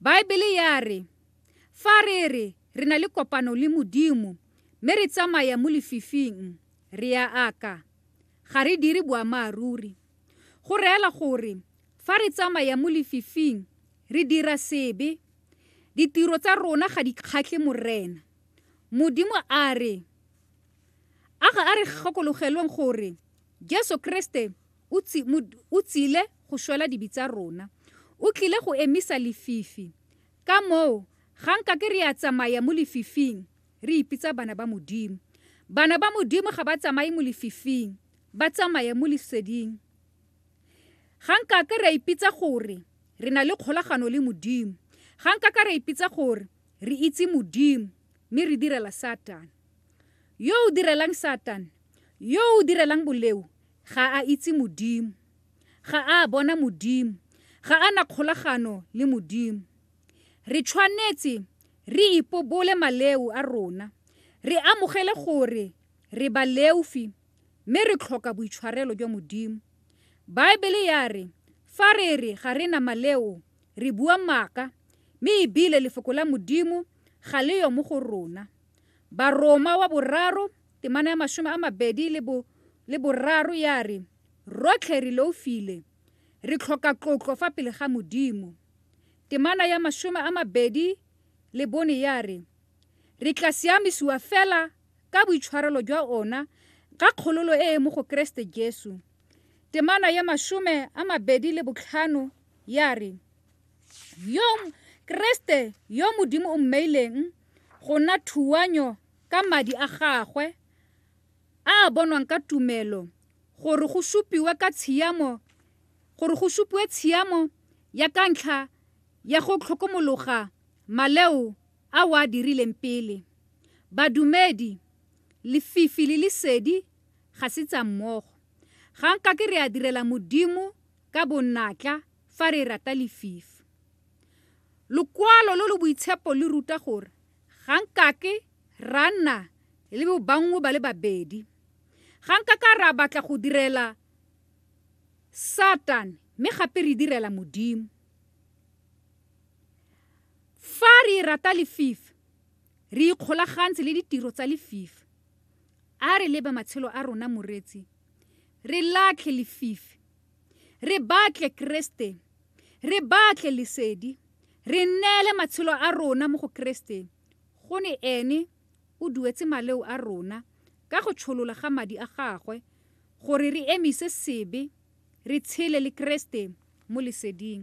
Baebele ya re, fa re re re na le kopano le Modimo mme re tsamaya mo lefifing, re a aka. Ga re dire boammaaruri. Go reela gore fa re tsamaya mo lefifing, re dira sebe. Ditiro tsa rona ga di kgatlhe Morena. Modimo a re, a ga a re gakologelweng gore Jesu Kreste o tsile go shwela dibi tsa rona. O tlile go emisa lefifi. Ka moo, ga nka ke re a tsamaya mo lefifing, re ipitsa bana ba Modimo. Bana ba Modimo ga ba tsamaye mo lefifing, ba tsamaya mo Leseding. Ga nka ke ra ipitsa gore re na le kgolagano le Modimo. Ga nka ka ra ipitsa gore re itse Modimo mme re direla Satane. Yo o direlang Satane, yo o direlang boleo, ga a itse Modimo. Ga a bona Modimo. Ga a na kgolagano le Modimo. Re tshwanetse re ipobole maleu a rona, re amogele gore re baleufi mme re tlhoka boitshwarelo jwa Modimo. Baebele ya re fa re re ga re na maleo re bua maaka mme ebile lefoko la Modimo ga le yo mo go rona. Baroma wa boraro, temana ya masome a mabedi le bo le boraro ya re, Rotlhe re loufile, re tlhoka tlotlo fa pele ga Modimo. Temana ya masome a mabedi le bone ya re, Re tla siamisiwa fela ka boitshwarelo jwa ona ka kgololo e e mo go Keresete Jesu. Temana ya masome a mabedi le botlhano ya re, Yo Keresete yo Modimo o mmeileng Go nna thuanyo ka madi a gagwe a a bonwang ka tumelo gore go supiwe ka tshiamo gore go supiwe tshiamo ya ka ntlha ya go tlhokomologa maleo a o a dirileng pele. Badumedi, lefifi le lesedi ga se tsa mmogo. Ga nka ke re a direla Modimo ka bonatla fa re rata lefifi. Lokwalo lo lo boitshepo le ruta gore ga nkake ra nna le bobanngwe ba le babedi. Ga nkaka ra batla go direla Satane mme gape re direla Modimo. Fa re rata lefifi, re ikgolagantse le ditiro tsa lefifi. A re leba matshelo a rona, moreetsi, re latlhe lefifi Re batle Keresete. Re batle lesedi. Re nneele matshelo a rona mo go Keresete, go ne Ene o duetse maleo a rona ka go tsholola ga Madi a Gagwe, gore re emise sebe, re tshele le Keresete mo leseding.